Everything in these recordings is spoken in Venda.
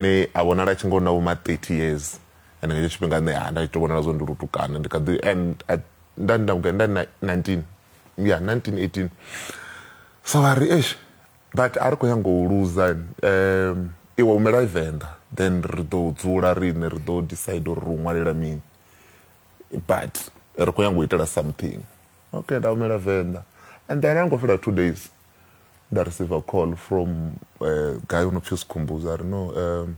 ne a vhonala tshi ngo na vho ma 30 years and nga hetsho tshifhinga nṋe ha nda tshi to vhonala zwo ndi lutukana ndi kha ḓi and nda nda nda 19 ya 1918 so vha ri eish but a ri khou nyanga u luza um iwe humela venḓa then ri ḓo dzula riṋe ri ḓo decide uri ri u ṅwalela mini but ri khou nyanga u itela something okay nda humela venḓa and then a ngo fhela two days nda receiver call from uh, eh, guy u no pfi sikhumbuza ri no um,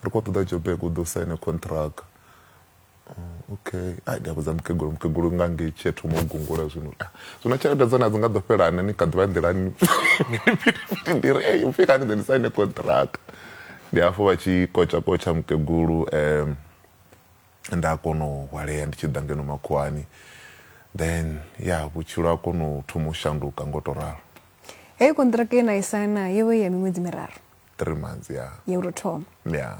ri khou ṱoḓa jobek u ḓo saine contract oh, okay ai ndi a vhudza mukegulu mukegulu nga ngei tshi a thoma u gungula zwino ah, zwino tshelede dzone a dzi nga ḓo fhelani ni kha ḓivha nḓilani ndi ri ei upfi kani ḓe ndi saine contract ndi hafho vha tshi kotsha kotsha mukegulu um nda kona u hwalea ndi tshi ḓa ngeno makhuwani then ya vhutshilo ha kona u thoma u shanduka ngo to ralo heyo kontraka ye na i saina yo vha ya miṅwedzi miraru three months ya ya u tou thoma ya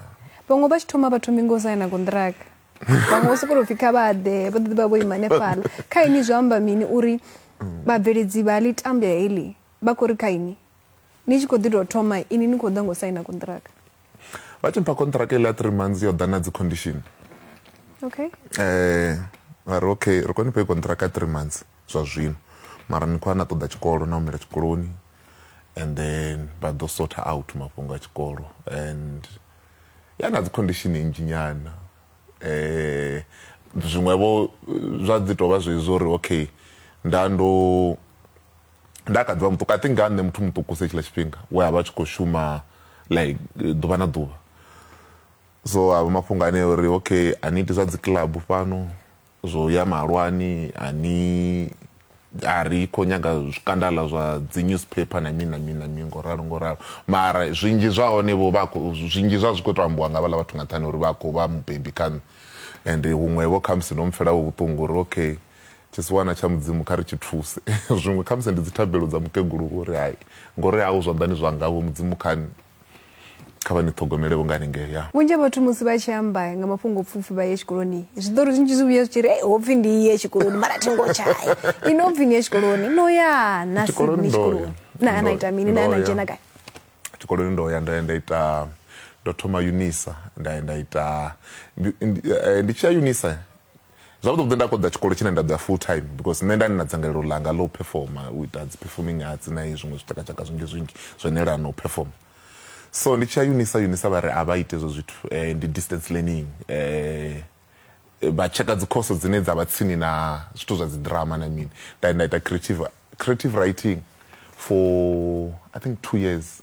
vhaṅwe vha tshi thoma vha thomi ngo saina kontraka vhaṅwe vho sokou pfhi kha vha ḓe vha ḓo vha vho ima hanefhala kha ini zwi amba mini uri vhabveledzi vha ḽi tambya heḽi vha khou ri kha ini ni tshi khou ḓi tou thoma ini ni khou ḓa ngo saina konṱiraka vha tshi mpha konṱiraka iḽa three months yo ḓa na dzi condition okay eh vha ri okay ri khou ni fhe konṱiraka three months zwa zwino mara ni khou a na ṱoḓa tshikolo na humela tshikoloni and then vha ḓo sorta out mafhungo a tshikolo and ya na dzi condition nnzhi nyana eh zwiṅwevho zwa dzi tovha zwezwo uri okay nda ndo nda kha ḓivha muṱuku i think nga nṋe muthu muṱuku se tshila tshifhinga we a vha tshi khou shuma like ḓuvha na ḓuvha so a vha mafhungo ane uri okay a ni iti zwa dzi club fhano zwo ya malwani a ni a ri khou nyaga zwikandala zwa dzi newspaper na mini na mini na mini ngo ralo ngo ralo mara zwinzhi zwa hone vho vha zwinzhi zwa zwi khou to ambiwa nga vhaḽa vhathu nga nṱhani uri vha khou vha mubebi kha nṋe and huṅwe vho khamusi no mpfela vhuṱungu uri okay Tshisiwana tsha Mudzimu kha ri tshi thuse. Zwiṅwe khamusi ndi dzithabelo dza mukegulu vho uri, Hai, ngo ri au zwanḓani zwanga, Vho Mudzimu kha ni, kha vha ni ṱhogomele vho nga ni nge ya. Vhunzhi ha vhathu musi vha tshi amba nga mafhungopfufhi vha ye tshikoloni, zwiṱori zwinzhi zwi vhuya zwi tshi ri, Hei, ho pfi ndi ye tshikoloni mara thi ngo tsha ya. Inwi ho pfi ni ye tshikoloni, no ya na si ni tshikoloni? Na, na ita mini? Na, na dzhena gai? Tshikoloni ndo ya, ndo ya nda ita, ndo thoma Unisa, nda ya nda ita, ndi, ndi, ndi tshi ya Unisa, Zwavhuḓi vhuḓi nda koḓa tshikolo tshine nda ḓo ya full time because nṋe nda ndi na dzangalelo ḽanga ḽo phefoma u ita dzi performing arts na hezwi zwiṅwe zwitshakatshaka zwinzhi zwinzhi zwo no elana na u phefoma. So ndi tshi ya Unisa, Unisa vha ri a vha iti hezwo zwithu ndi distance learning vha tsheka dzi course dzine dza vha tsini na zwithu zwa dzi drama na mini. Nda ya nda ita creative creative writing for I think two years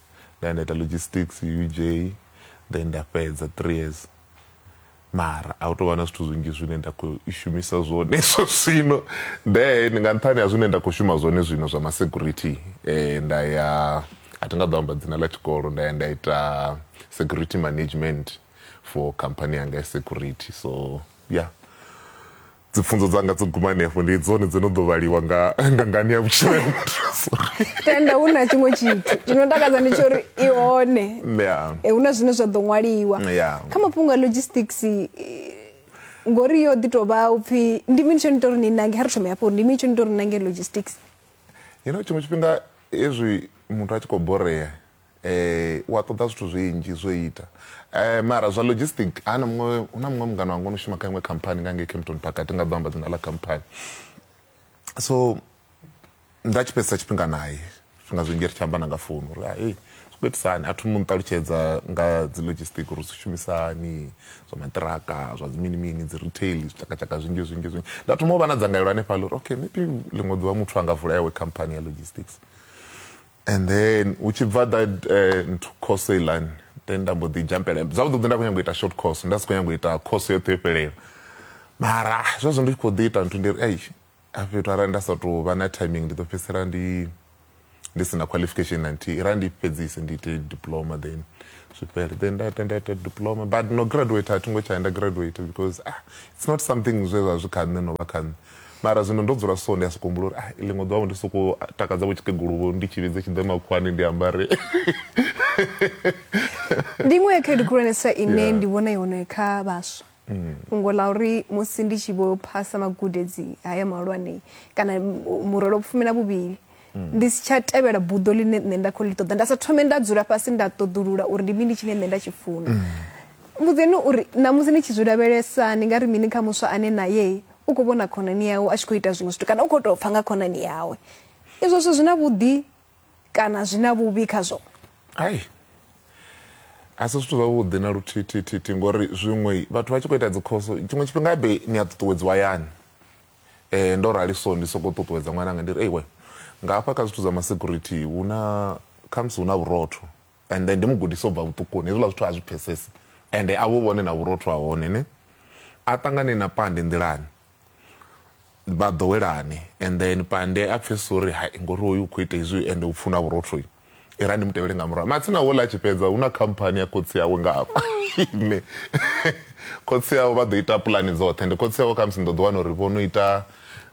nda ya nda ita logistics uj then nda fhedza three years mara a hu tou vha na zwithu zwinzhi zwine nda khou shumisa zwone zwo zwino then nga nṱhani ha zwine nda khou shuma zwone zwino zwa masecurity um nda ya a thi nga ḓo amba dzina ḽa tshikolo nda ya nda ita security management for company yanga ya security so ya yeah. dzipfunzo dzanga dzo guma henefho ndi dzone dzo no ḓo vhaliwa nga nga ngani ya vhutshilo ya muthu sorry tenda hu na tshiṅwe tshithu tshino takadza ndi tsho uri i hone yeah Eh, hu na zwine zwa ḓo ṅwaliwa Yeah. kha mafhungo a logistics eh, ngori yo ḓi tou vha u pfhi ndi mini tsho ni ita uri ni nange ha ri thome hafho uri ndi mini tsho ni ita uri ni nange logistics you know tshiṅwe tshifhinga hezwi muthu a tshi khou borea Ee, u a ṱoḓa zwithu zwinzhi zwo ita um mara zwa logistic ha na muṅwe hu na muṅwe mungana wanga ono shuma kha iṅwe khamphani nga ngei campton park a thi nga ḓo amba dzina ḽa khamphani so nda tshi fhedzisa tshifhinga naye zwifhinga zwinzhi ri tshi amba na nga founu uri hai zwi khou itisa hani a thoma u nṱalutshedza nga dzi logistic uri zwi shumisa hani zwa maṱiraka zwa dzi mini mini dzi retail zwitshakatshaka zwinzhi zwinzhi zwinzhi nda thoma u vha na dzangalelo hanefhaḽa uri okay maybe ḽiṅwe ḓuvha muthu a nga vula yawe khamphani ya logistics and then hu tshi bva that uh, nthu course elan then nda mbo ḓi jampela zwavhuḓi vhuḓi nda khou nyanga u ita short course nda si khou nyanga u ita course yoṱhe yo fhelela mara zwezwo ndi tshi khou ḓi ita nthu ndi ri ei a fhethu arali nda sa tou vha na timing ndi ḓo fhedzisela ndi ndi si na qualification na nthihi ra ndi fhedzise ndi ite diploma then zwifhele then nda ita nda ita diploma but no graduate a thi ngo tsha nda graduate because ah, it's not something zwe zwa zwi kha nṋe no vha kha nṋe Mara zwino ndo dzula so, ndi a sokou humbula uri ah, ḽiṅwe ḓuvha-vho ndi sokou takadza-vho tshikegulu-vho ndi tshi vhidze tshi ḓe makhuwani ndi ambare. Ndi iṅwe ya khaedu khulwanesa ine yeah. ndi vhona i hone kha vhaswa mm. fhungo ḽa uri musi ndi tshi vho phasa magudedzi haya mahulwane kana murole o pfumela vhuvhili ndi si tsha tevhela buḓo ḽine nṋe nda khou ḽi ṱoḓa nda sa thome nda dzula fhasi nda ṱoḓulula uri ndi mini tshine nṋe nda tshi funa mm. mbudzeni uri ṋamusi ni tshi zwi lavhelesa ni nga ri mini kha muswa ane naye u khou vhona khonani yawe a tshi khou ita zwiṅwe zwithu kana u khou tou pfha nga khonani yawe izwo zwithu zwi na vhuḓi kana zwi na vhuvhi khazwo ai a si zwithu zwavhuḓi na luthithithithi ngori zwiṅwe vhathu vha tshi khou ita dzikhoso tshiṅwe tshifhinga be ni a ṱuṱuwedziwa yani Eh, ndo rali so ndi sokou ṱuṱuwedza ṅwananga ndi ri ei we nga hafha kha zwithu zwa masecurity hu na khamusi hu na vhurotho and then ndi mu gudisa u bva vhuṱukuni hezwiḽa zwithu a zwi pfesesi ende a vhu vhone na vhurotho ha hone ne a ṱangane na pande nḓilani vha ḓowelane and then pande a pfhesesa uri hai ngori hoyu u khou ita izwi ende u pfuna vhurotho i ra ndi mutevhele nga murahu matsina wo ḽa tshi fhedza hu na khamphani ya khotsi yawe nga hafha ine khotsi yawe vha ḓo ita pulani dzoṱhe ndi khotsi yawe khamusi ni ḓo ḓi wana uri vho no ita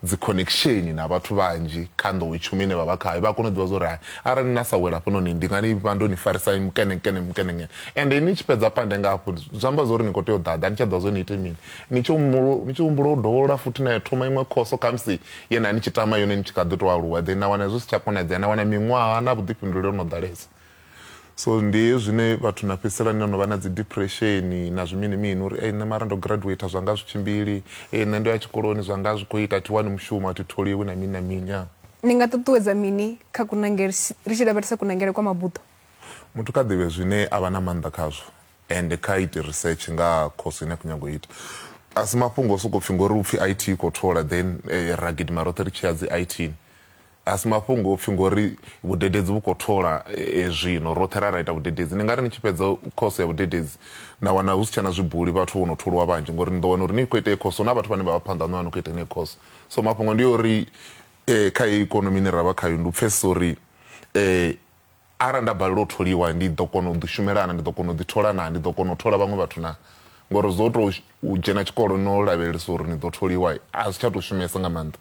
dzi connection na vhathu vhanzhi kha nḓowetshumo ine vha vha khayo vha kona u ḓivha zwa uri hai arali na sa wela hafhanoni ndi nga ni vha ndo ni farisa mukenekene mukenekene ende ni tshi fhedza pande nga hafho zwi amba zwa uri ni khou tea u ḓaḓa ni tsha ḓivha zwa ni ite mini ni tshi humbula u dovholola futhi na ya thoma iṅwe khoso khamusi ye na ni tshi tama yone ni tshi kha ḓi tou aluwa then na wana zwi si tsha konadzea na wana miṅwaha na vhuḓifhinduleli no ḓalesa so ndi hezwi zwine vhathu na fhedzisela ni no vha na dzi depression na zwimini mini uri ei nṋe mara ndo graduate zwa nga zwi tshimbili ei nṋe ndo ya tshikoloni zwa nga zwi khou ita thi wani mushumo a thi tholiwi na mini na mini ya ni nga ṱuṱuwedza mini kha kunangele ri tshi lavhelesa kunangele kwa mabuḓo muthu kha ḓivhe zwine a vha na maanḓa khazwo Ende kha ite research nga ha course ine a khou nyaga u ita. Asi mafhungo o soko pfi ngori upfi IT i khou thola then ra gidima roṱhe ri tshi ya dzi IT ni. Asi mafhungo opfi ngori vhudededzi vhu khou thola zwino roṱhe ra ra ita vhudededzi. Ni ngari ni tshi fhedza course ya vhudededzi na wana husi tshena zwibuli vhathu vhono tholiwa vhanzhi ngori ni ḓo wana uri ni kho ita heyi course huna vhathu vhane vha vha phanḓa haṋu vha no kho ita yeneyo course. So mafhungo ndi ori kha heyi ikonomi ine ravha khayo ndi u pfhesesa uri Arali nda balelwa u tholiwa, ndi ḓo kona u ḓishumela naa? Ndi ḓo kona u ḓithola naa? Ndi ḓo kona u thola vhaṅwe vhathu naa? Ngori zwo tou u dzhena tshikolo no lavhelesa uri ni ḓo tholiwa, a zwi tsha tou shumesa nga maanḓa.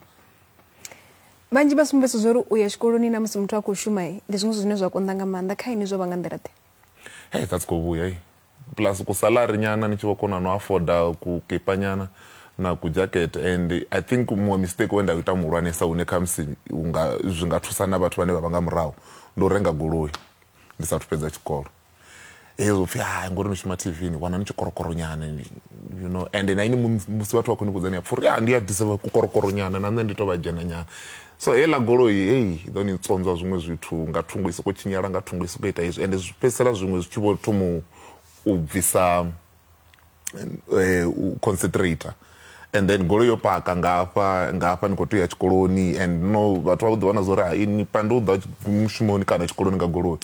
Vhanzhi vha sumbedzisa zwa uri u ya tshikoloni na musi muthu a khou shuma ndi zwiṅwe zwithu zwine zwa konḓa nga maanḓa. Kha inwi zwo vha nga nḓila-ḓe? Hei zwa si khou vhuya. plus ku salary nyana ni tshi vho kona no afforda ku kipa nyana na ku jacket and i think muṅwe mistake we nda ita muhulwanesa hune khamusi unga zwi nga thusa na vhathu vhane vha vha nga murahu ndi u renga goloi ndi sathu fhedza tshikolo hezwo pfhi hai ngori ni shuma tv ni wana ni tshikorokoro nyana you know and na ini musi vhathu vha khou ni vhudza ni a pfha uri ndi a disa kukorokoro nyana na nṋe ndi to vha dzhena nyana so heiḽa goloi hei i ḓo ni tsonzwa zwiṅwe zwithu nga thungo i soko tshinyala nga thungo i soko ita izwi ende zwi fhedzisela zwiṅwe zwi tshi vho thoma u bvisa um u concentrator and then goloi yo paka nga hafha nga hafha ni khou tea u ya tshikoloni and no vhathu vha vho ḓi vhona zwa uri hai ni pande u ḓa mushumoni kana tshikoloni nga goloi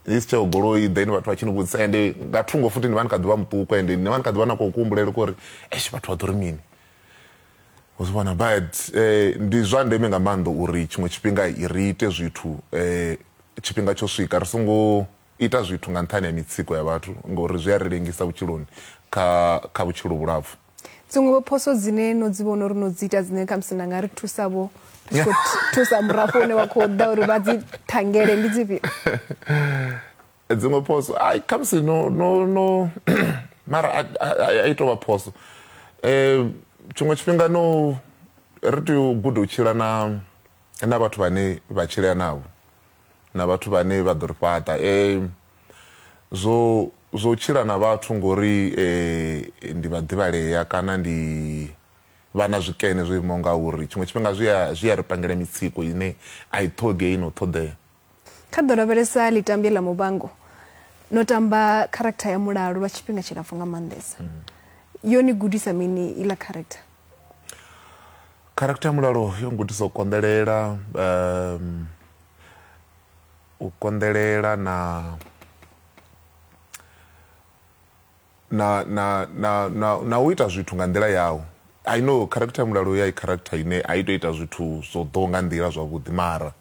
ni si tsheo goloi then vhathu vha tshi ni vhudzisa ende nga thungo futhi ni vha ni kha ḓi vha muṱuku ende ni vha ni kha ḓi vha na khou kuhumbulele kori esh vhathu vha ḓo ri mini u zwi vhona but eh, ndi zwa ndeme nga maanḓa uri tshiṅwe tshifhinga i ri ite zwithu eh, tshifhinga tsho swika ri songo ita zwithu nga nṱhani ha mitsiko ya vhathu ngori zwi a ri lengisa vhutshiloni kha kha vhutshilo vhulapfu dziṅwe vho phoso dzine no dzi vhona uri no dzi ita dzine khamusi na nga ri thusa vho ri tshi khou thusa murafho une wa khou ḓa uri vha dzi thangele ndi dzifhio dziṅwe phoso ai khamusi no no no mara a i tovha phoso um tshiṅwe tshifhinga no ri tea u guda u tshila na na vhathu vhane vha tshilea navho na vhathu vhane vha ḓo ri fhaṱa um zwo zwo tshila na vhathu ngori eh ndi vha ḓivhalea kana ndi vha na zwikene zwo imaho ngauri tshiṅwe tshifhinga zwi a zwi a ri pangela mitsiko ine a i ṱhogei no ṱhoḓea Kha ḓo lavhelesa ḽitambya ḽa Muvhango no tamba character ya Mulalo lwa tshifhinga tshilapfu nga maanḓesa. Mm. Yo ni gudisa mini iḽa character? Character ya Mulalo yo ngudisa u konḓelela um u konḓelela na na, na, na, na, na u ita zwithu nga nḓila yau i know character ya mulalo ya i character ine a i to ita zwithu zwo ḓo nga nḓila zwavhuḓi mara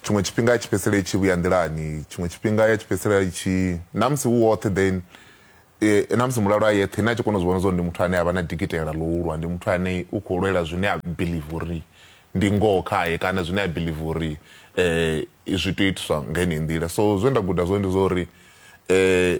tshiṅwe tshifhinga ya tshi fhedzisela i tshi vhuya nḓilani tshiṅwe tshifhinga ya tshi fhedzisela i tshi na musi hu woṱhe then e, na musi mulalo a yeṱhe ine a tshi kona u zwi vhona zwa uri ndi muthu ane a vha na dikitela ḽo ulwa ndi muthu ane u khou lwela zwine a believe uri ndi ngoho khaye kana zwine a believe uri um zwi tea u itiswa nga heneyi nḓila so zwe nda guda zwone ndi zwa uri um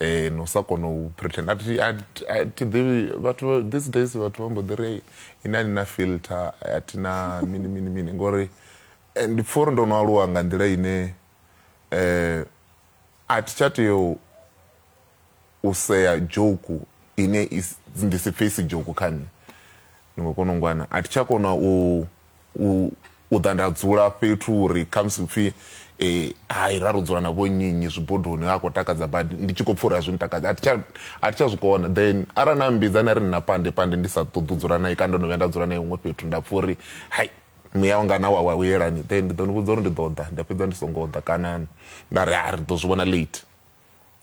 eh no sa kona u pretend athi athi ḓivhi vhathu these days vhathu vha mbo ḓi ri ini a ni na filter a thi na mini mini mini ngori eh, ndi pfha uri ndo no aluwa nga nḓila ine eh a thi tsha tea u sea joku ine ndi si pfhe isi joku kha nṋe ni khou kona u ngwana a thi tsha kona u u u ḓa nda dzula fhethu uri khamusi upfhi eh, hai ra ro dzula na vhonnyinyi zwibodoni ha khou takadza badi ndi tshi khou pfha uri a zwi ntakadza a thi tsha- a thi tsha zwi kona then arali na mbidza na ri nna pande pande ndi sa ṱoḓi u dzula naye kana ndo no vhuya nda dzula naye huṅwe fhethu nda pfha uri hai muya wanga na wa wa uyelani then ndi ḓo ni vhudza uri ndi ḓo ḓa nda fhedza ndi songo ḓa kana nda ri a ri ḓo zwi vhona late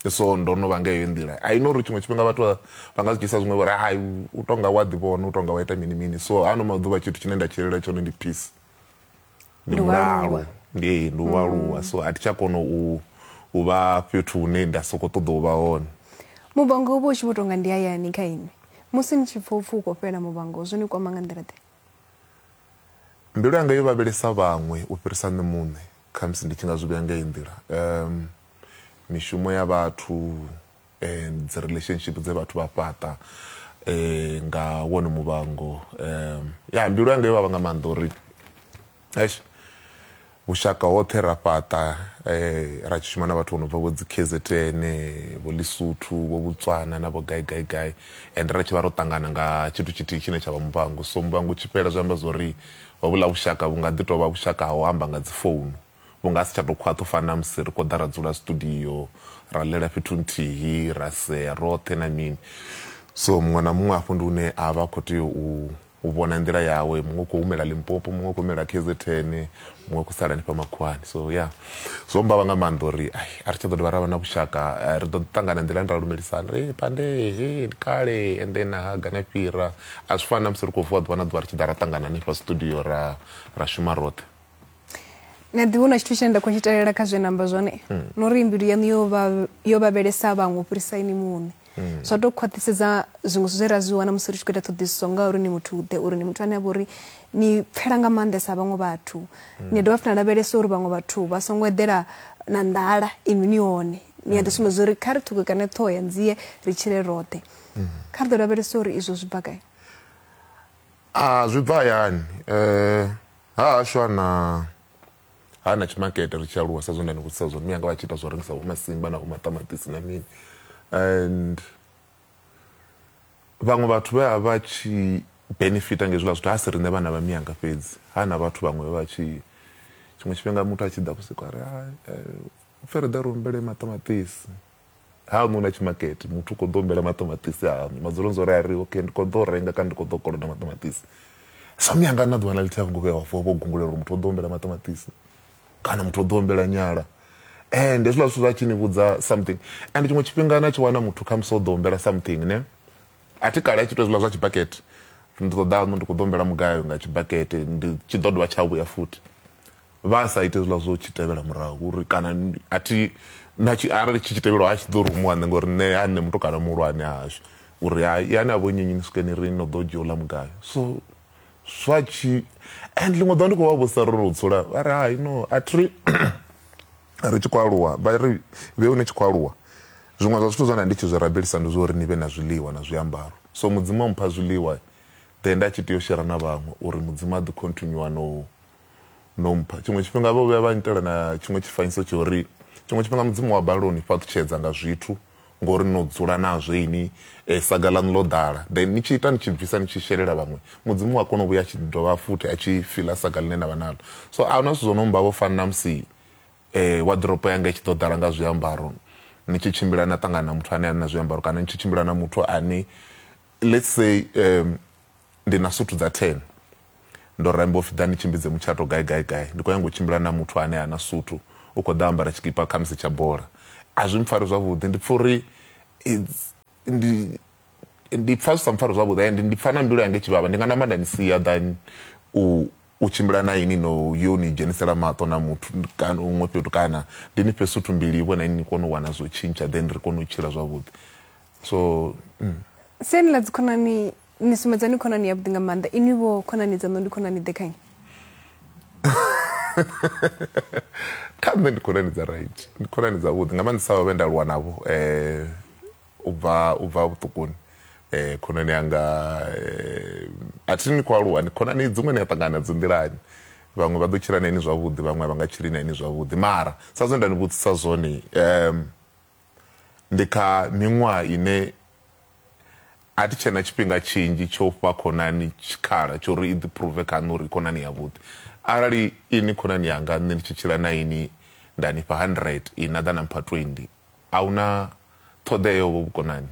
so ndo no vha nga heyo nḓila i know uri tshiṅwe tshifhinga vhathu vha nga zwi dzhisa zwiṅwe vhori hai u tonga wa ḓivhona u tonga wa ita mini mini so ano maḓuvha tshithu tshine nda tshilela tshone ndi peace ndi mulalo ndi ndi u aluwa so a thi tsha kona u u vha fhethu hune nda sokou ṱoḓa u vha hone mubango u vha u tshi vho tonga ndi hayani kha inwi musi ni tshi pfa upfhi u khou fhela mubango zwo ni kwama nga nḓila ḓe mbilu yanga yo vhavhelesa vhaṅwe u fhirisa nṋe muṋe Khamusi ndi tshi nga zwi vhea nga heyi nḓila, mishumo ya vhathu and dzi relationship dze vhathu vha fhaṱa nga wone muvhango. Ya mbilu yanga yo vhavha nga maanḓa uri eish vhushaka hoṱhe ra fhaṱa ra tshi shuma na vhathu vho no bva vho dzi K_Z_N, vho Ḽisotho, vho Botswana na vho gai gai gai and ra tshi vha ro ṱangana nga tshithu tshithihi tshine tsha vha muvhango. So muvhango u tshi fhela zwi amba zwori Hovhuḽa vhushaka vhu nga ḓi tou vha vhushaka ha u amba nga dzifounu. Vhu nga si tsha tou khwaṱha u fana na musi ri khou ḓa ra dzula studio, ra ḽela fhethu nthihi, ra sea roṱhe na mini. So muṅwe na muṅwe hafho ndi hune a vha a khou tea u u vhona nḓila yawe. Muṅwe u khou humela Limpopo, muṅwe u khou humela KZN, muṅwe u khou sala hanefha makhuwani. So ya, zwo mmbavha nga maanḓa uri ai a ri tsha ḓo dovha ra vha na vhushaka. Ri ḓo ḓi ṱangana nḓilani ra lumelisana uri, Hee Pandee, hee ndi kale, and then ha gana fhira. a zwi fani na musi ri khou vuwa ḓuvha na ḓuvha ri tshi ḓa ra ṱangana hanefha studio ra ra shuma roṱhe na ḓi huna tshithu tshine nda khou tshi talela kha zwe namba zwone hmm. no ri mbilu yaṋu yo vha yo vhavhelesa vhaṅwe u fhirisa ini muṋe hmm. zwa tou khwaṱhisedza zwiṅwe zwithu zwe ra zwi wana musi ri tshi khou ita ṱhoḓisiso ngauri ni muthu ḓe uri ni muthu ane a vha uri ni pfela nga maanḓesa vhaṅwe vhathu hmm. ni dovha futhi na lavhelesa uri vhaṅwe vhathu vha songo eḓela na nḓala inwi ni hone ni a ḓi sumbedza uri kha ri ṱhukukane ṱhoho ya nzie ri tshile roṱhe mm. kha ri ḓo lavhelesa uri izwo zwi bva gai a zwi bva hayani um ha hashu ana ha na tshimakete ri tshi aluwa sa zwo nda ni vhudzisa zwone miyanga vha tshi ita zwo rengisa vho masimba na vho maṱamaṱisi na mini and vhaṅwe vhathu vhe a vha tshi benefita ngezwiḽa zwithu ha si riṋe vhana vha miyanga fhedzi ha na vhathu vhaṅwe vha tshi tshiṅwe tshifhinga muthu a tshi ḓa vhusiku a ri eh, U pfi ri ḓa ri humbele maṱamaṱisi haṋu na tshimakete muthu u kho ḓo humbela maṱamaṱisi haṋu madzulo ndzo ri a ri okay ndi kho ḓo renga kana ndi kho ḓo koloda maṱamaṱisi so miyanga na ḓuvha na ḽithihi a vho ngo vhuya vha vho gungula uri muthu o ḓo humbela maṱamaṱisi kana muthu o ḓo humbela nyala and hezwiḽa zwithu zwa tshi ni vhudza something and tshiṅwe tshifhinga na tshi wana muthu khamusi o ḓo humbela something ne a thi kale a tshi tou hezwiḽa zwa tshibakete ndi ṱoḓa aṋu ndi khou ḓo humbela mugayo nga tshibakete ndi tshi ḓo dovha tsha vhuya futhi vha sa ite zwiḽa zwo tshi tevhela murahu uri kana a thi na tshi arali tshi tshi tevhelwa a tshi ḓo rumuwa nṋe ngori nṋe ha nṋe mutukana muhulwane hashu uri ha yani a vho nyenyi ni swike ni ri no ḓo dzhia u ḽa mugayo so zwa tshi and ḽiṅwe ḓo ndi khou vha vhusa ro ro dzula vha ri hai no a thi ri tshi khou aluwa vha ri vhe hune tshi khou aluwa zwiṅwe zwa zwithu zwa nda ndi tshi zwi rabelisa ndi zwa uri ni vhe na zwiḽiwa na zwiambaro so mudzimu a mpha zwiḽiwa then nda tshi tea u shera na vhaṅwe uri mudzimu a ḓi continue na u no mpha tshiṅwe tshifhinga vho vhuya vha nnyitela na tshiṅwe tshifanyiso tsho uri tshiṅwe tshifhinga mudzimu wa balelwa u ni fhaṱutshedza nga zwithu ngori no dzula nazwo ini eh, saga ḽaṋu ḽo ḓala then ni tshi ita ni tshi bvisa ni tshi shelela vhaṅwe mudzimu wa kona u vhuya a tshi dovha futhi a tshi fila saga ḽine na vha nalo so a huna zwithu zwo no mba vho fani na musi eh, waḓiropo yanga i tshi ḓo ḓala nga zwiambaro ni tshi tshimbila na ṱangana na muthu ane a na zwiambaro kana ni tshi tshimbila na muthu ane let's say um, Ndi na suthu dza ten. Ndo ramba u pfi ḓa ni tshimbidze mutshato gai gai gai. Ndi khou nyanga u tshimbila na muthu ane ha na suthu, u khou ḓa o ambara tshikipa khamusi tsha bola. A zwi mpfari zwavhuḓi, ndi pfa uri it's ndi ndi pfa zwi sa mpfari zwavhuḓi and ndi pfa na mbilu yanga i tshi vhavha. Ndi nga namba nda ni sia than u u tshimbila na inwi no yo ni dzhenisela maṱo na muthu kana huṅwe fhethu kana ndi ni fhe suthu mbili vho na inwi ni kone u wana zwo tshintsha then ri kone u tshila zwavhuḓi. So. Siani ḽa dzikhonani ni sumbedza ni khonani yavhuḓi nga maanḓa inwi vho khonani dzaṋo ndi khonani ḓe khanye kha nṋe ndi khonani dza right ndi khonani dza vhuḓi nga maanḓisa vha vhe nda lwa navho um u bva u bva vhuṱukuni um khonani yanga um a thi ni khou aluwa ni khonani dziṅwe ni a ṱangana nadzo nḓilani vhaṅwe vha ḓo tshila na ini zwavhuḓi vhaṅwe vha nga tshili na ini zwavhuḓi mara sa zwe nda ni vhudzisa zwone um ndi kha miṅwaha ine A thi tshe na tshifhinga tshinzhi tsha u fha khonani tshikhala tsha uri i ḓiphuruve kha nṋe uri i khonani yavhuḓi. Arali inwi khonani yanga nṋe ndi tshi tshila na inwi nda ni fha hundred inwi na ḓa na mpha twendi, a hu na ṱhoḓea ya uvho vhukonani.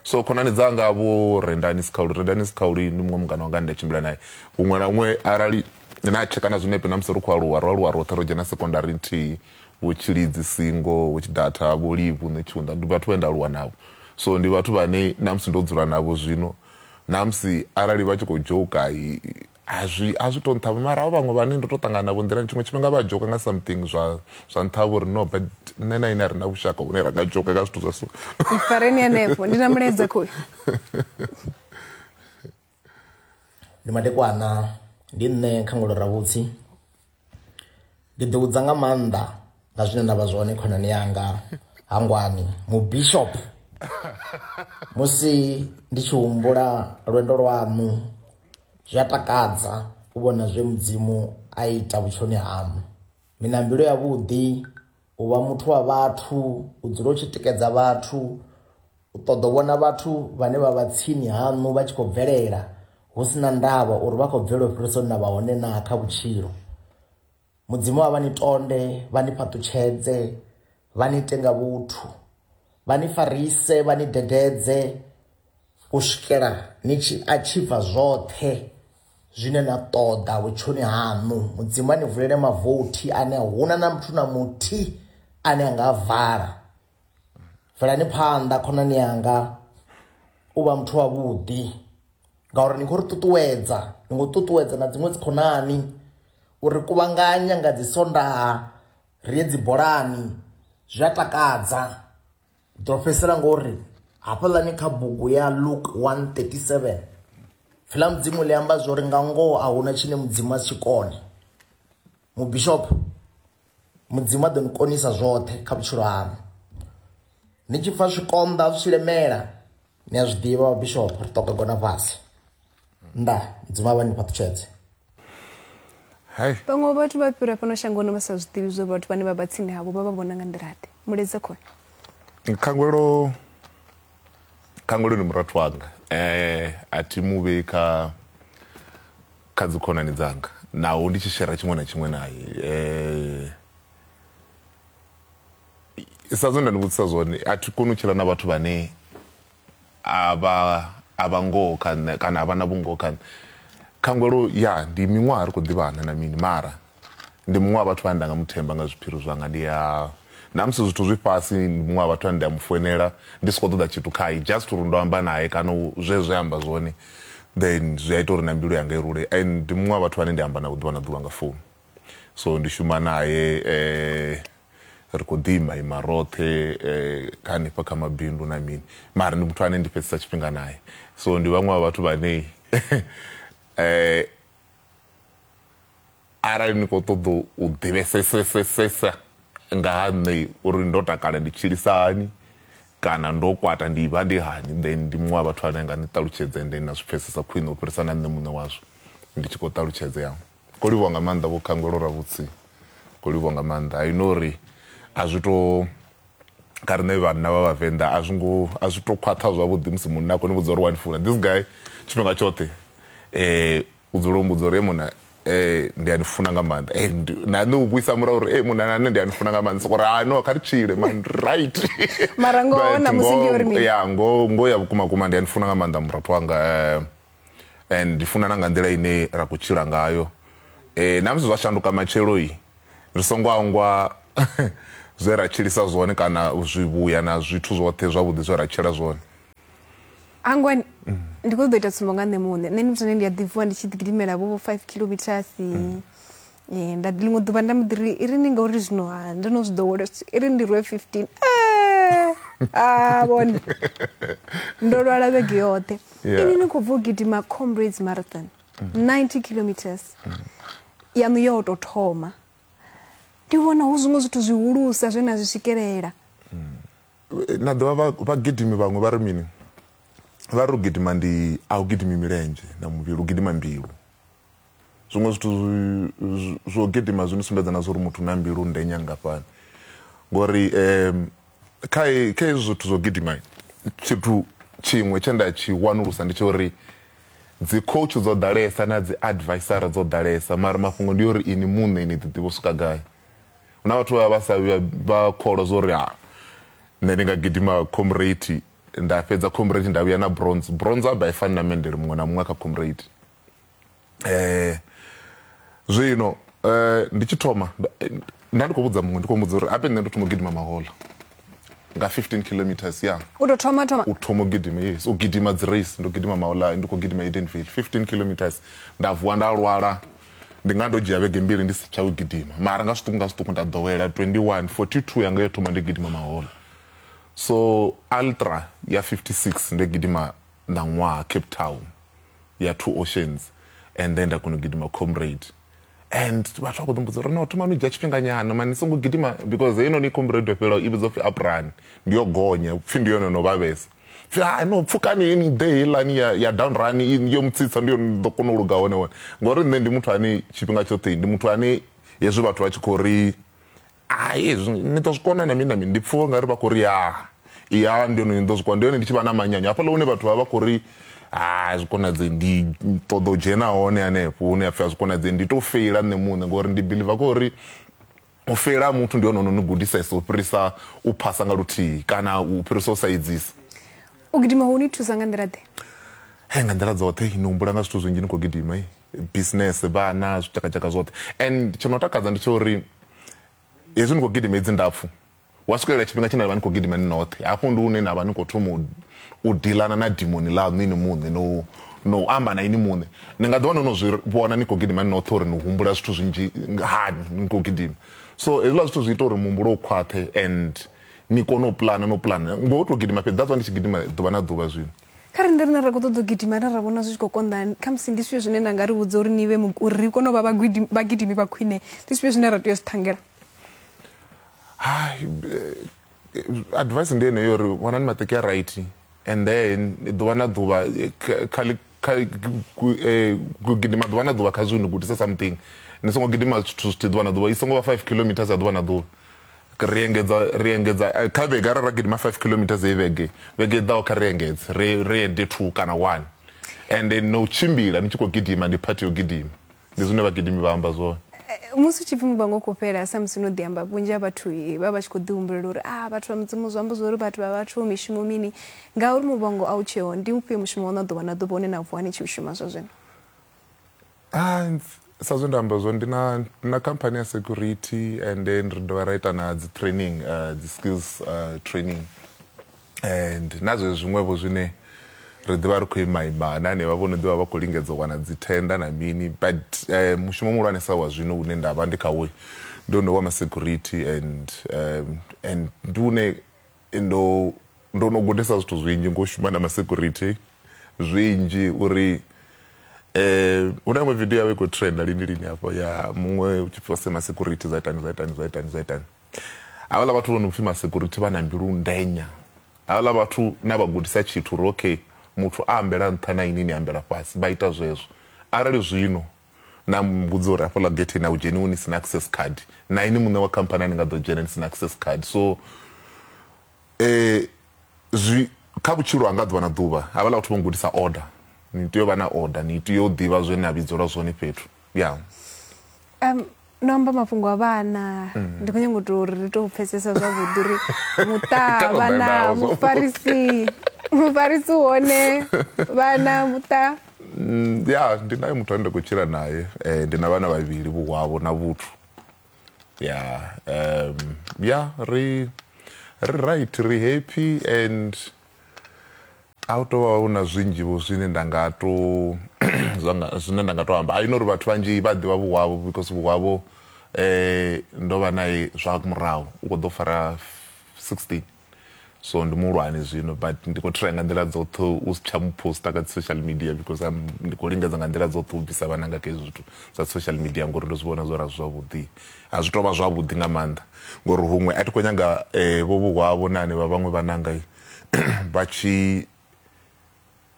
So khonani dzanga vho Rendani Sikhauli, Rendani Sikhauli ndi muṅwe mungana wanga ane nda tshimbila nae huṅwe na huṅwe arali na tsheka na zwinepe na musi ri khou aluwa ro aluwa roṱhe ro dzhena sekondari nthihi. vho tshilidzi singo vho tshidatha vho livhu nṋe tshiunda ndi vhathu vhane nda aluwa navho so ndi vhathu vhane namusi ndo dzula navho zwino namusi arali vha tshi khou joka azwi azwi to nṱhavha mara avho vhaṅwe vhane ndo to ṱangana navho nḓilani tshiṅwe tshifhinga vha joka nga something zwa zwa nṱhavha uri no but nṋe na ine a re na vhushaka hune ra nga joka nga zwithu zwa so ifareni hanefho ndi na mulaedza khoyu ndi madekwana ndi nṋe kha ngolo ravhutsi ndi ḓi vhudza nga maanḓa nga zwine nda vha zwone khonani yanga hangwani mu bishop musi ndi tshi humbula lwendo lwaṋu zwi a takadza u vhona zwe mudzimu a ita vhutshoni haṋu mina mbilu yavhuḓi u vha muthu wa vhathu u dzula u tshi tikedza vhathu u ṱoḓa u vhona vhathu vhane vha vha tsini haṋu vha tshi khou bvelela hu si na ndavha uri vha khou bvelela u fhirisa hune na vha hone na kha vhutshilo mudzimu wa vha ni tonde vha ni fhaṱutshedze vha ni ite nga vhuthu vha ni farise vha ni dededze u swikela ni tshi atshivha zwoṱhe zwine na ṱoḓa vhutshoni haṋu mudzimu a ni vulele mavothi ane a huna na muthu na muthi ane a nga a vala velani phanḓa khonani yanga u vha muthu wavhuḓi ngauri ni khou ri ṱuṱuwedza ni khou ṱuṱuwedza na dziṅwe dzikhonani uri kuvhanganya nga dzi sondaha ri ye dzi bolani zwi a takadza ḓo fhedzisela ngo ri hafhaḽani kha bugu ya luke 137 fila mudzimu ḽi amba zwo ri nga ngoho a huna tshine mudzimu a si tshi kone mubishopo mudzimu a ḓo ni konisa zwoṱhe kha vhutshilo haṋu ni tshi pfa zwikonḓa zwi tshi lemela ni a zwi ḓivha vhabishop ri ṱoka gona fhasi nda mudzimu a vha ni fhaṱutshedze Hai. vhaṅwe vhathu vha fhira fhano shangoni vha sa zwi ḓivhi zwo vhathu vhane vha vha tsini havho vha vha vhona nga nḓilaḓe muledza khona khangwelo khangwelo ndi murathu wanga eh a thi mu vhei kha kha dzikhonani dzanga naho ndi tshi shera tshiṅwe na tshiṅwe naye eh sa zwe nda ni vhudzisa zwone a thi koni u tshila na vhathu vhane a vha a vha ngoho kha nṋe kana a vha na vhungoho kha nṋe khangwelo ya ndi miṅwaha ri khou ḓivhana na mini mara ndi muṅwe wa vhathu vhane nda nga muthemba nga zwiphiri zwanga ndi a na musi zwithu zwi fhasi ndi muṅwe wa vhathu ane ndi a mu foinela ndi si khou ṱoḓa tshithu khae just uri ndo amba naye kana zwe zwe amba zwone then zwi a ita uri na mbilu yanga i rule and ndi muṅwe wa vhathu vhane ndi amba navho ḓuvha na ḓuvha nga founu so ndi shuma naye um ri khou ḓi ima ima roṱhe kha hanefha kha mabindu na mini mara ndi muthu ane ndi fhedzisa tshifhinga naye so ndi vhaṅwe vha vhathu vhanei um arali ni khou ṱoḓa u ḓivhesesesesa nga ha nṋe uri ndo takala ndi tshilisa hani kana ndo kwata ndi vha ndi hani then ndi muṅwe wa vhathu ane nga ni ṱalutshedze and then na zwi pfhesesa khwine u fhirisa na nṋe muṋe wazwo ndi tshi khou ṱalutshedzea Ko livhuwa nga maanḓa vho Khangwelo Ravhutsi ko livhuwa nga maanḓa I know uri a zwi to kha riṋe vhanna vha vhavenḓa a zwi ngo a zwi to khwaṱha zwavhuḓi musi munna a kho ni vhudza uri wa ni funa this guy tshifhinga tshoṱhe um u dzula u mbudza uri e munna um ndi a ni funa nga maanḓa and na nṋe u vhuisa murahu uri e munna na nṋe ndi a ni funa nga maanḓa soko ri ha no kha ri tshile man right mara ngoho na musi ndi uri mini ya ngoho ngoho ya vhukuma kuma ndi a ni funa nga maanḓa murathu wanga um and ndi funa na nga nḓila ine ra khou tshila ngayo eh na musi zwa shanduka matshelo yi ri songo angwa zwe ra tshilisa zwone kana zwivhuya na zwithu zwoṱhe zwavhuḓi zwe ra tshila zwone angwani mm. ndi khou ḓo ita tsumbo nga nṋe muṋe nṋe ndi muthu ane ndi a ḓivuwa ndi tshi ḓigidimela vho vho five kilometers mm. nda ḽiṅwe ḓuvha nda muḓi ri i ri ni ngauri zwino ha ndo no zwi ḓowela i ri ndi rwe fifteen a vhone ndo lwala vhege yoṱhe ini ni khou bva u gidima comrades marathon ninety kilometers yanu yo tou thoma ndi vhona hu zwiṅwe zwithu zwihulusa zwe na zwi swikelela na ḓovha vhagidimi vhaṅwe vha ri mini vha ri u gidima ndi a u gidimi milenzhe na muvhili u gidima mbilu zwiṅwe zwithu zwo gidima zwi ni sumbedza na zwori muthu na mbilu nde nyangafhani ngori um kha kha hezwi zwithu zwo gidima tshithu tshiṅwe tshe nda tshi wanulusa ndi tsha uri dzi coach dzo ḓalesa na dzi advisor dzo ḓalesa mara mafhungo ndi uri ini muṋe ni ḓiḓivha u swika gai huna vhathu vha vha sa vha kholwa zwa uri ha nṋe ndi nga gidima comrade nda fhedza comrade nda vhuya na bronze bronze a ba i fani na mendele muṅwe na muṅwe kha comrade eh zwino eh ndi tshi thoma nda ndi khou vhudza muṅwe ndi khou muvhudza uri ape nṋe ndo thoma u gidima mahola nga 15 kilometers ya u tou thoma thoma u thoma u gidima yes u gidima dzi race ndo gidima mahola ndi khou gidima edenville 15 kilometers nda vuwa nda lwala ndi nga ndo dzhia vhege mbili ndi si tsha u gidima mara nga zwiṱuku nga zwiṱuku nda ḓowela 21 42 yanga yo thoma ndi gidima mahola so ultra ya 56 ndo gidima ṋaṅwaha cape town ya two oceans and then nda kona u gidima comrade and vhathu vha khou ḓimbudza uri no thomani u dzhia tshifhinganyana mani songo gidima because heinoni comrade yo fhelelaho i vhidzwa pfhi aprani ndi yo gonya pfhi ndi yone no vhavhesa pfhi ha no pfukani ni ḓe heilani ya down run yo mutsitsa ndi yone ḓo kona u luga hone hone ngori nṋe ndi muthu ane tshifhinga tshoṱhe ndi muthu ane hezwi vhathu vha tshi khou ri hai hezwi ni ḓo zwi kona na mini na mini ndi pfuwa nga ri vha khou ri ya ya ndi hone ni ḓo zwi kona ndi hone ndi tshi vha na manyanyo hafhaḽa hune vhathu vha vha khou ri ha zwi konadze ndi ṱoḓa u dzhena hone hanefho hune a pfhi a zwi konadze ndi tou feila nṋe muṋe ngori ndi biliva kha uri u feila ha muthu ndi hone ono ni gudisesa u fhirisa u phasa nga luthihi kana u fhirisa u sa edzisa u gidima ho ni thusa nga nḓila ḓe he nga nḓila dzoṱhe ni humbula nga zwithu zwinzhi ni khou gidima business vhana zwitshakatshaka zwoṱhe and tsho no takadza ndi tsha uri hezwi ni khou gidima hedzi ndapfu wa swikelela tshifhinga tshine navha ni khou gidima ni noṱhe hafho ndi hune navha ni khou thoma u dilana na dimoni ḽaṋu ini muṋe no no amba na ini muṋe ni nga ḓiwana no zwi vhona ni khou gidima ni noṱhe uri ni humbula zwithu zwinzhi hani ni khou gidima so hezwiḽa zwithu zwi ita uri muhumbulo u khwaṱhe and ni kone u pulana no pulana ngo to gidima fhedzi that's why ndi tshi gidima ḓuvha na ḓuvha zwino kha ri nde rine ra khou ṱoḓa u gidima ra ra vhona zwi tshi khou konḓa kha musi ndi zwifhio zwine nda nga ri vhudza uri ni vhe uri ri kone u vha vhagidimi vha khwine ndi zwifhio zwine ra tea u zwi ṱhangela hai eh, advice ndi yeneyo uri vhonani maṱeki a right and then ḓuvha na ḓuvha eh, kha gidima ḓuvha na ḓuvha kha zwi ni gudisa something ni songo gidima zwithu zwithihi ḓuvha na ḓuvha i songo vha five kilometers ya ḓuvha na ḓuvha ri engedza ri engedza eh, kha vhege arali ra gidima five kilometers ye vhege vhege i ḓaho kha ri engedze ri ri ende two kana one ende no tshimbila ni tshi khou gidima ndi phathi yo gidima Ndi zwine vhagidimi vha amba zwone. Musi u tshi pfi muvhango u khou fhela, samusi no ḓi amba, vhunzhi ha vhathu vha vha vha tshi khou ḓihumbulela uri, A, vhathu vha Mudzimu zwi amba zwa uri vhathu vha vhathu, mishumo mini? Ngauri muvhango a u tsheho, ndi ufhio mushumo waṋu wa ḓuvha na ḓuvha une na vuwa ni tshi u shuma zwa zwino? Sa zwe nda amba zwone, ndi na, ndi na khamphani ya security and then ri dovha ra ita na dzi training, dzi skills training. and na zwezwi zwiṅwevho zwine ri ḓivha ri khou imaima na hanevha vho no ḓivha vha khou lingedza u wana dzithenda na mini but um, mushumo muhulwanesa wa zwino une nda vha ndi khawo ndo ndo wa masecurity and um, and ndi une ndo ndo no gudisa zwithu zwinzhi ngo shuma na masecurity zwinzhi uri eh una iṅwe video yawe i khou trenda lini lini hafho ya muṅwe u tshi pfose masecurity zwa itani zwa itani zwa itani zwa itani Havhala vhathu vho no pfi masecurity vha na mbilu ndenya. Havhala vhathu na vha gudisa tshithu uri okay muthu a ambela nṱha na ini ni ambela fhasi vha ita zwezwo. Arali zwino na mbudza uri hafhaḽa getheni a hu dzheniwi ni sina access card na ini muṋe wa khamphani a ni nga ḓo dzhena ni sina access card so zwi kha vhutshilo hanga ḓuvha na ḓuvha havhaḽa vhathu vho gudisa order ni tea u vha na order ni tea u ḓivha zwe na vhidzelwa zwone fhethu. ya Um, no amba mafhungo a vhana ndi khou nyanga u tou uri ri tou pfesesa zwavhuḓi uri muṱa Ita lo vhana ḓaḓaho. mufarisi mufarisi u hone vhana muṱa Mm, ya ndi naye muthu ane nda khou tshila naye eh, ndi na vhana vhavhili vhuhwavho na vhuthu ya um, ya ri ri right ri happy and A hu tou vha hu na zwinzhi vho zwine nda nga to zwine nda nga to amba. I know uri vhathu vhanzhi vha ḓivha vhuhwa havho because vhuhwa havho ndo vha nae zwa murahu u kho ḓo fara 16 so ndi muhulwane zwino but ndi khou try nga nḓila dzoṱhe u si tsha mu poster kha dzi social media because am ndi khou lingedza nga nḓila dzoṱhe u bvisa vhananga kha hezwi zwithu zwa social media ngori ndo zwi vhona zwo ri a zwi zwavhuḓi a zwi tou vha zwavhuḓi nga maanḓa ngori huṅwe a thi khou nyanga vho vhuhwavho na hanevha vhaṅwe vhananga vha tshi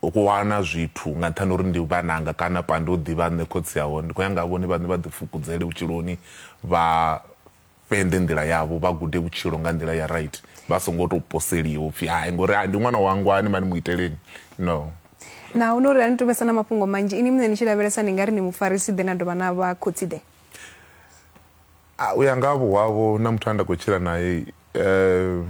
wana zwithu nga nṱhani uri ndi vhananga kana pande u ḓivha nṋe khotsi aho ndi khou ya nga vhone vhaṋe vha ḓi fukudzele vhutshiloni vha fhende nḓila yavho vha gude vhutshilo nga nḓila ya right vha songo tou poseliwa upfhi hai ngori ndi ṅwana wangwa ani mani mu iteleni no na hu no uri a ni tovhesa na mafhungo manzhi ini muṋe ni tshi lavhelesa ndi nga ri ni mufarisi ḓe na dovha na vha khotsi ḓe u ya nga vho wavho na muthu a nda khou tshila naye um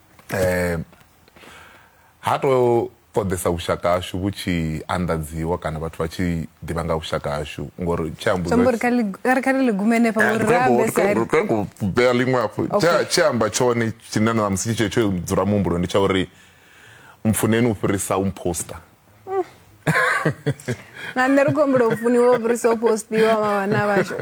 eh ha to ṱoḓesa vhushaka hashu vhu tshi anḓadziwa kana vhathu vha tshi ḓivha nga vhushaka hashu ngori tshi ambari kha ḽi gume henefha eh, ngori rabesari kha ku bea ḽiṅwe hafhu tshi amba tshone tshine na musi tshi tsho dzula muhumbuloni tsha uri mpfuneni u fhirisa u mposter nga nṋe ri khou humbula u funiwa u fhirisa u postiwa vha vhana vhashu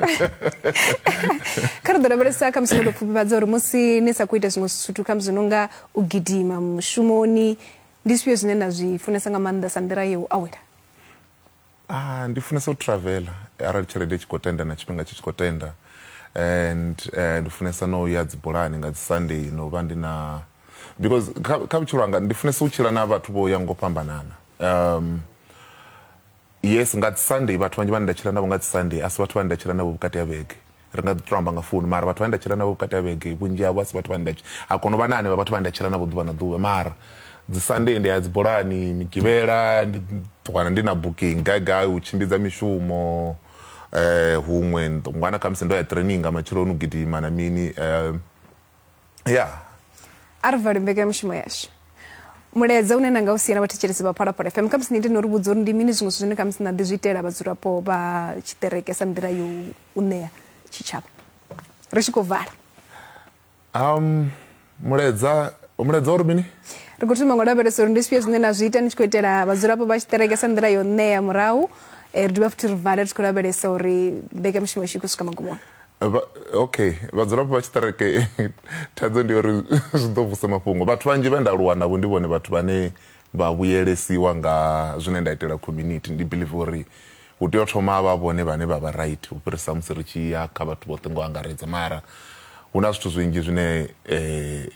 kha ri ḓo lavhelesa kha musi no tou pfufhifhadza uri musi ni sa khou ita zwiṅwe zwithu kha musi no nga u gidima mushumoni ndi zwifhio zwine na zwi funesa nga maanḓa sa nḓila ya u awela ah ndi funesa u travela arali tshelede tshi khou tenda na tshifhinga tshi tshi khou tenda and eh, ndi funesa no ya dzibulani nga dzi sunday no vha ndi na because kha, kha vhutshilo hanga ndi funesa u tshila na vhathu vho ya ngo fhambanana um, yes nga dzi sunday vhathu vhanzhi vhane nda tshila navho nga dzi sunday a si vhathu vhane nda tshila navho vhukati ha vhege ri nga ḓi to amba nga founu mara vhathu vhane nda tshila navho vhukati ha vhege vhunzhi havho a si vhathu vhane nda ha kono vha na hanevha vhathu vhane nda tshila navho ḓuvha na ḓuvha mara dzi sunday ndi ya dzi bolani migivhela ndi ṱwana ndi na booking gai gai u tshimbidza mishumo eh huṅwe ndo- ṅwana khamusi ndo ya training nga matsheloni u gidima na mini um ya a ri vali mbekanyamushumo yashu mulaedza une na nga u siela vhathetshelesi vha phalaphala fm khamusi ni ite no ri vhudza uri ndi mini zwiṅwe zwithu zwine khamusi na ḓi zwi itela vhadzulapo vha tshiṱereke sa nḓila yo u ṋea tshitshavha ri tshi khou vala um mulaedza mulaedza uri mini ri khou thoma ngo lavhelesa uri ndi zwifhio zwine na zwi ita ni tshi khou itela vhadzulapo vha tshiṱereke sa nḓila yo ṋea murahu eh, ri dovha futhi ri vale ri tshi khou lavhelesa uri mbekanyamushumo yashu i khou swika magumoni Vha, okay vhadzulapo vha tshiṱereke thaidzo ndi uri zwi ḓo vusa mafhungo vhathu vhanzhi vhe nda aluwa navho ndi vhone vhathu vhane vha vhuyelesiwa nga zwine nda itela community ndi believe uri hu tea u thoma a vha vhone vhane vha vha right u fhirisa musi ri tshi ya kha vhathu vhoṱhe ngo angaredza mara hu na zwithu zwinzhi zwine eh,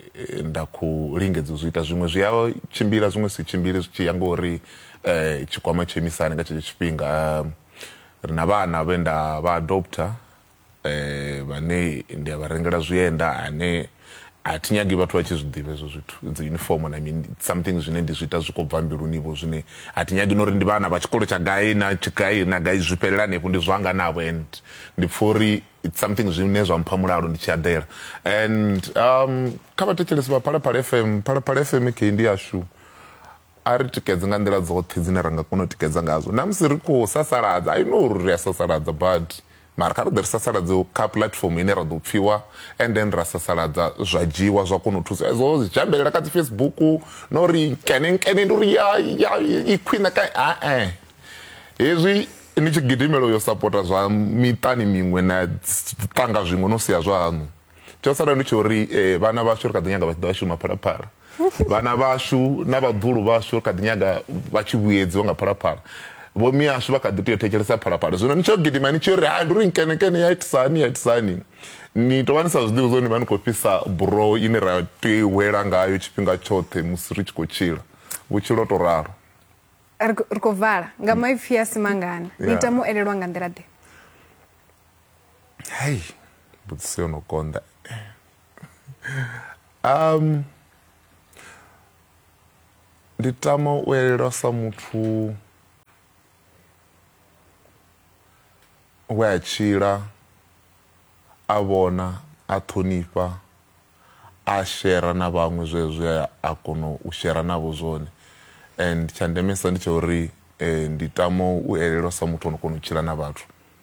nda khou lingedza u zwi ita zwiṅwe zwi a tshimbila zwiṅwe si tshimbili zwi tshi ya ngori eh, tshikwama tsho imisani nga tshetsho tshifhinga um, Ri na vhana vhe nda vha adoptha vhane ndi a vha rengela zwienda ane a thi nyagi vhathu vha tshi zwi ḓivha hezwo zwithu dzi uniform na mini something zwine ndi zwi ita zwi khou bva mbiluni vho zwine a thi nyagi na uri ndi vhana vha tshikolo tsha gai na gai na gai zwi fhelela hanefho ndi zwanga navho and ndi pfha uri it's something zwine zwa mpha mulalo ndi tshi aḓela and um kha vhathetshelesi vha phalaphala fm phalaphala fm kheyi ndi yashu A ri tikedze nga nḓila dzoṱhe dzine ra nga kona u tikedza ngadzo. Na musi ri khou sasaladza, I know uri ri a sasaladza badi, mara kha ri ḓe ri sasaladze kha puḽatifomo ine ra ḓo pfiwa and then ra sasaladza zwa dzhiiwa zwa kona u thusa. Hezwo zwi dzhambelela kha dzi Facebook na uri nkene nkene ndi uri ya ya i khwine ka a-e. Hezwi ni tshi gidimela u yo sapota zwa miṱani miṅwe na ṱanga zwiṅwe no sia zwaṋu. tsho sala ndi tsho ri eh, vhana vhashu ri kha ḓi nyaga vha tshi ḓo shuma phalaphala vhana vhashu na vhaḓulu vhashu ri kha ḓi nyaga vha tshi vhuyedziwa nga phalaphala vho miyashu vha kha ḓi tea u thetshelesa phalaphala zwino ni tsho gidima ni tshi ri ha ndi ri nkenekene ya itisani ya itisani ni tovha ni sa zwiḓivhi zwo ni vha ni khou fhisa buroho ine ra tea u hwela ngayo tshifhinga tshoṱhe musi ri tshi khou tshila vhutshilo to ralo ri khou vala nga maipfi a simangana ni ita mu elelwa nga nḓila ḓe hei mbudziso yo no konḓa um ndi tama u elelwa sa muthu we a tshila a vhona a ṱhonifha a shera na vhaṅwe zwe zwe a kona u shera navho zwone and tsha ndemesa ndi tsha uri um ndi tama u elelwa sa muthu o no kona u tshila na vhathu